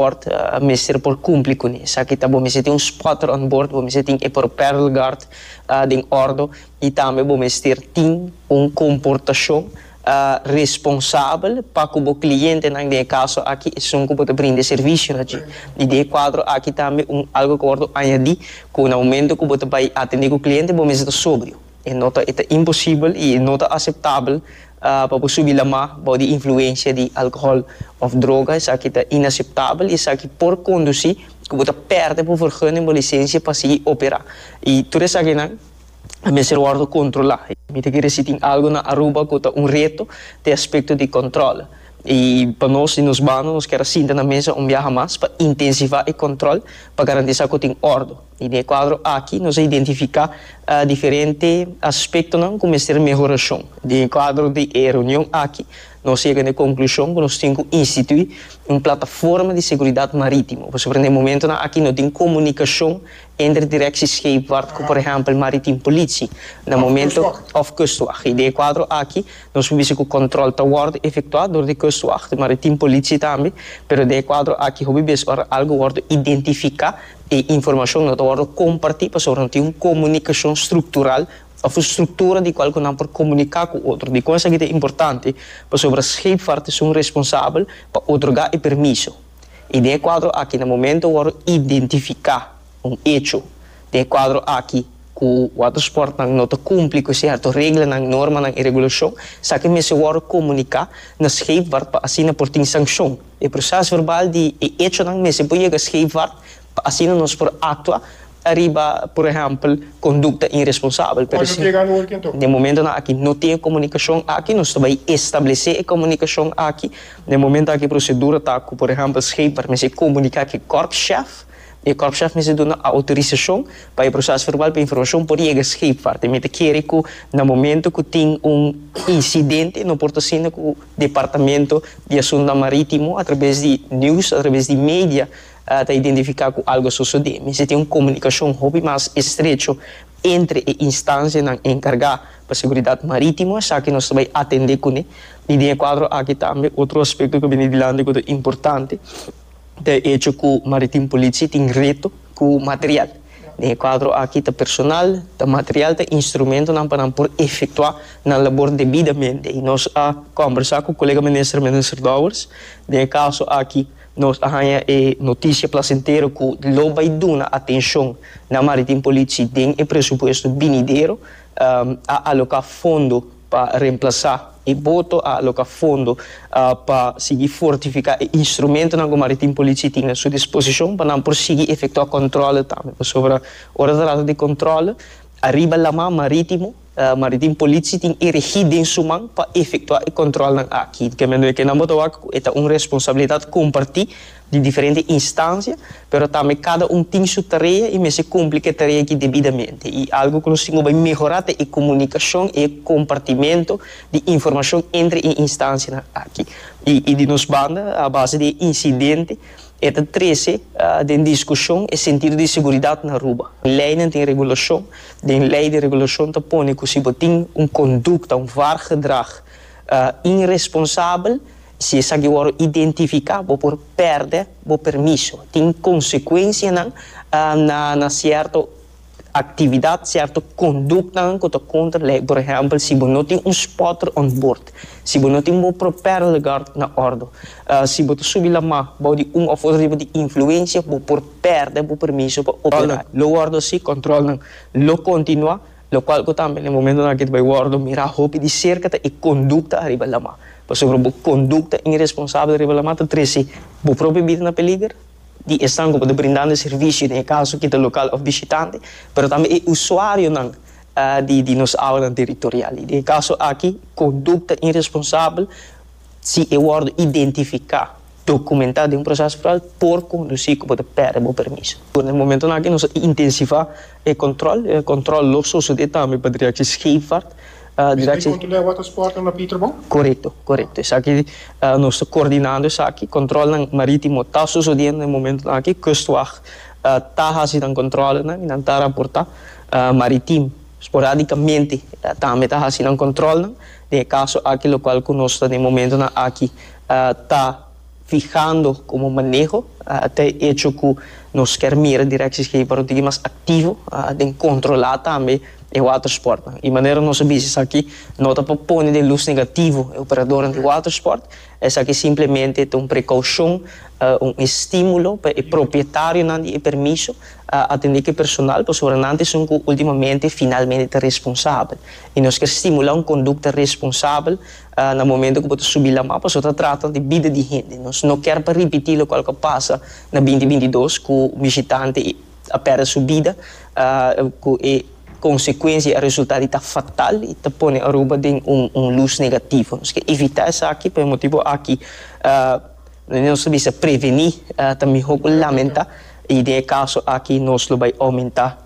Port a mester por cumpli cu ne. Esaki ta bo mester tin un spotter on board, bo mester tin e propel guard den ordo y tambe bo mester tin un comportacion responsabel pa cu bo clientenan, den e caso aki esun cu bo ta brinda e servicionan dje. Y den e cuadro aki tambe un algo cu a wordo añadi cu na momento cu bo ta bay atende cu cliente bo mester ta sobrio. E no ta, e ta imposibel i e no ta aseptabel pa bo subi lamá bou di influensia di alkohòl òf droga. Esaki ta inaseptabel i esaki por kondusí ku bo ta pèrdè bo vergunnen, bo lisensia pa sigui operá. I tur esakinan a mester wòrdu kontrolá. Mi ta kere si tin algu na Aruba ku ta un reto den aspekto di kòntròl. I pa nos, di nos banda, nos kier a sinta na mesa un biaha mas pa intensivá e kòntròl pa garantisá ku tin òrdu. I den e kuadro aki nos a identifiká diferente aspektonan ku mester mehorashon. Den e kuadro di e reunion aki nos a yega na e konklushon ku nos tin ku instituí un plataforma di seguridat marítimo pasobra na e momentunan aki no tin komunikashon entre Direksie Scheepvaart ku por ehèmpel Maritim Politie na momento òf Kustwag. I den e kuadro aki nos por bisa ku kòntròl ta wòrdu efektuá dor di Kustwag, di Maritim Politie tambe, pero den e kuadro aki hopi bes ora algu wòrdu identifiká E informashon no ta wòrdu kompartí pasobra no tin un komunikashon struktural òf un struktura di kual ku nan por komuniká ku otro. Dikon esaki ta importante? Pasobra Scheepvaart es un responsabel pa otorgá e permiso i den e kuadro akí na momento wòrdu identifiká un echo den e kuadro akí ku watersportnan no ta kumpli ku sierto reglanan, normanan i regulashon, esaki mester wòrdu komuniká na Scheepvaart pa asina por tin sankshon. E proces verbal di e hechonan mester por yega scheva pa asina nos por actua ariba, por ehempel, conducta irresponsabel. Por ejemplo, den e momentonan aki no tin e comunicacion aki, nos ta bay establece e comunicacion aki. Den e momento aki e procedura ta cu, por ehempel, schepper mester comunica cu e korpschef. E kòrpschèf mester duna outorisashon pa e prosès verbal pa informashon por yega Scheepvaart. E mester kere ku na momentu ku tin un insidente e no por ta sinda ku Departamento di Asuntunan Marítimo atrabes di news, atrabes di media, ta identifiká ku algu a sosodé. Mester tin un komunikashon hopi mas estrecho entre e instansianan enkargá pa seguridat marítimo. Esaki nos ta bai atendé kuné. I den e kuadro aki tambe otro aspekto ku a bini dilanti ku ta importante. Ta hecho cu Maritim Politie tin reto cu material. Den e cuadro aki ta personal, ta material, ta instrumentonan pa nan por efectua nan labor debidamente. Y nos a combersa cu colega minister, Minister Dowers. Den e caso aki nos a haya e noticia placentero cu lo bay duna atencion na Maritim Politie den e presupuesto binidero. A aloca fondo. pa remplasá e boto a aloká fondo pa sigui fortifiká e instrumentonan ku Maritim Politie tin na su disposishon pa nan por sigui efektuá kòntrole tambe. Pasobra ora ta trata di kòntrole ariba laman marítimo, Maritim Politie tin e regí den su man pa efektuá e kòntrolnan aki. Di ke manera ke nan bo ta wak ku e ta un responsabilidat kompartí. di diferente instancia, pero tambe cada un tin su tarea y mester cumpli cu e tarea aki debidamente. Y algo cu nos tin cu bay mehora ta e comunicacion y e compartimento di informacion entre e instancianan aki. Y y di nos banda a base di e incidente e ta trece den discusion e sentido di inseguridad na Aruba. Leynan tin regulacion, den ley di regulacion ta pone cu si bo tin un conducta, un wargedrag, Inresponsabel, Si esaki wòrdu identifiká, bo por pèrdè bo permiso. Tin konsekuensianan na sierto aktividat, sierto konduktanan ku ta kontra lei. Por ehèmpel, si bo no tin un spotter on board, si bo no tin bo propellegard na òrdu, si bo ta subi lamá bou di un òf otro tipo di influensia, bo por pèrdè bo permiso pa operá. Lo wòrdu así, kòntròlnan lo kontinuá. lokual ku tambe na e momentonan aki ta bai wòrdu mirá hopi di serka ta e kondukta ariba lamá. Pasobra bo kondukta iresponsabel ariba lamá ta trese bo propio bida na peliger di esnan ku bo ta brindando e servisio, den e kaso aki ta lokal òf bishitante, pero tambe e usuarionan di nos awanan teritorial. I den e kaso aki kondukta iresponsabel si e wòrdu identifiká Dokumentá den un prosès foral por kondusí ku bo ta pèrdè bo permiso. Duna e momentonan akí nos a intensivá e kòntròl. E kòntròl lo sosodé tambe pa direkshi Scheepvaart. Direkshi. Esaki konta den Watersporten na Pieterbon? Korekto, korekto. Esaki nos ta kordinando esaki. Kòntròlnan marítimo ta sosodiendo den e momentonan akí. Kustwag ta hasi nan kòntròlenan i nan ta raportá. Maritim sporadikamente tambe ta hasi nan kòntròlnan den e kaso akí lokual ku nos ta den e momentonan akí. ta fihando como maneho ta e echo cu nos kier mira Directie Schepen para un tiki mas activo den controla tambe e watersportnan. Y manera nos a biza esaki no ta pa pone den luz negativo e operadornan di watersport, esaki simplemente ta un precaucion, un estimulo pa e propietario di e permiso atende cu e personal pasobra nan ta esun cu ultimamente finalmente ta responsabel y nos kier stimula un conducta responsabel. Na momento cu bo ta subi lama, pasobra ta trata di bida di hende. Nos no ker pa ripiti locual cu a pasa na binti binti dos, cu un bishitante a perde su bida, cu e consecuencia, e resultado di ta fatal y ta pone Aruba den un luz negativo. Nos ke evita esaki, pa e motibo aki nos ta bisa preveni ta miho cu lamenta y den e caso aki nos lo bay aumenta.